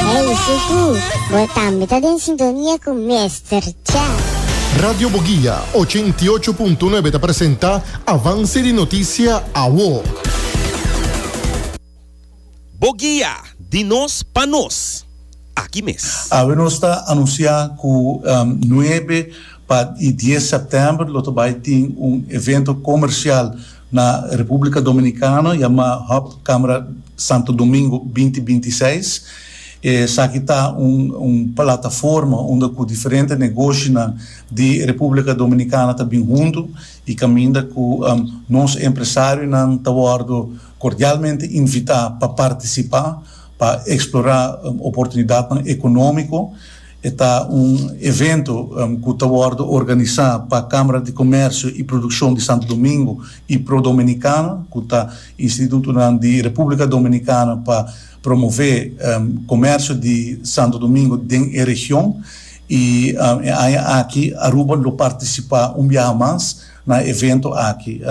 Hey Suku, bo tambe ta den sintonia cu Mester Chef. Radio Boguia ochen y ocho punto nuebe ta presenta Avance di Noticia Awo. Boguia, di nos pa nos. Aki mes. Awe nos ta anuncia cu nuebe pa y dies september lo ta bay tin un evento comercial Na Republica Dominicano yama Hub Camera Santo Domingo binti binti seis. Esaki ta un un plataforma unda cu diferente negoshinan di Republica Dominicana ta bin huntu y caminda cu nos empresarionan ta wordo cordialmente invita pa participa pa explora oportunidadnan economico. E ta un evento cu ta wordo organisa pa Camara di Comercio y Produccion di Santo Domingo y Pro Dominicana, cu ta institutonan di Republica Dominicana pa promove comercio di Santo Domingo den e region, y e aña aki Aruba lo participa un biaha mas na e evento aki.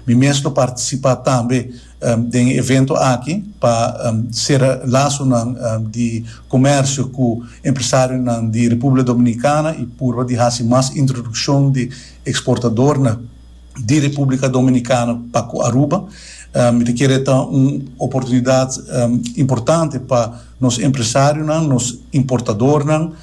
Mi mes lo participa tambe Den e evento aki pa sera lasonan di komersio ku empresarionan di Republika Dominikana i purba di hasi mas introdukshon di eksportadornan di Republika Dominikana pa ku Aruba. Mi ta kere ta un oportunidat importante pa nos empresarionan, nos importadornan,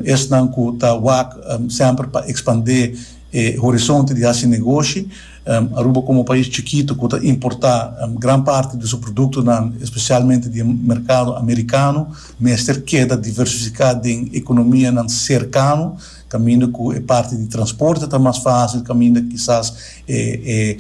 esnan ku ta wak semper pa ekspandé e horizonte di hasi negoshi. Aruba komo un pais chikitu ku ta importá gran parti di su produktonan, spesialmente di e merkado amerikano, mester keda diversifiká den ekonomianan serkano kaminda ku e parti di transporte ta mas fásil, kaminda kisas e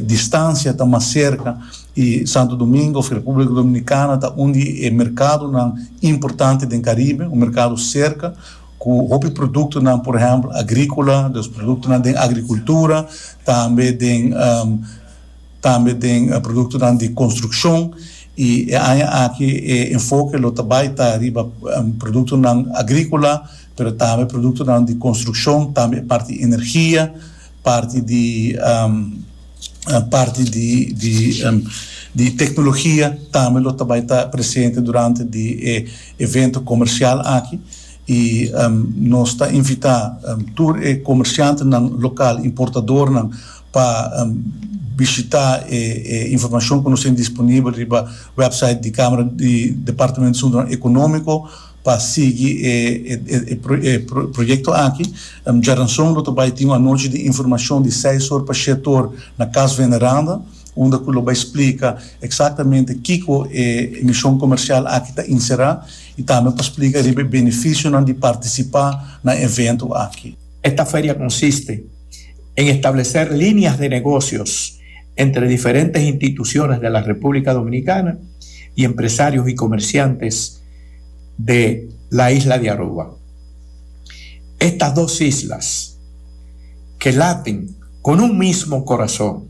distansia ta mas serka. I Santo Domingo òf Repúblika Dominikana ta un di e merkadonan importante den Karibe, un merkado serka. Ku hopi produktonan, por ehèmpel agríkola, dus produktonan den agrikultura, tambe den tambe den produktonan di konstrukshon. I e aña aki e enfoke lo ta bai ta riba produktonan agríkola, pero tambe produktonan di konstrukshon, tambe e parti energia, parti di parti di di di teknologia tambe lo ta bai ta presente durante di e evento comercial aki y nos ta invita tur e comerciantenan local, importadornan pa bishita e informacion cu nos tin disponibel riba website di Camera di Departamento di Asuntonan Economico pa sigui e proyecto aki. Djaranson lo ta bay tin un anochi di informacion di seis or pa shete or na Cas Veneranda. unda ku lo bai splika eksaktamente kiko e emishon komersial aki ta inserá i tambe pa splika riba e benefisionan di partisipá na evento aki. Esta feria konsiste en estableser líneas de negocios entre diferentes instituciones de la República Dominicana y empresarios y comerciantes de la isla de Aruba. Estas dos islas que laten con un mismo corazón.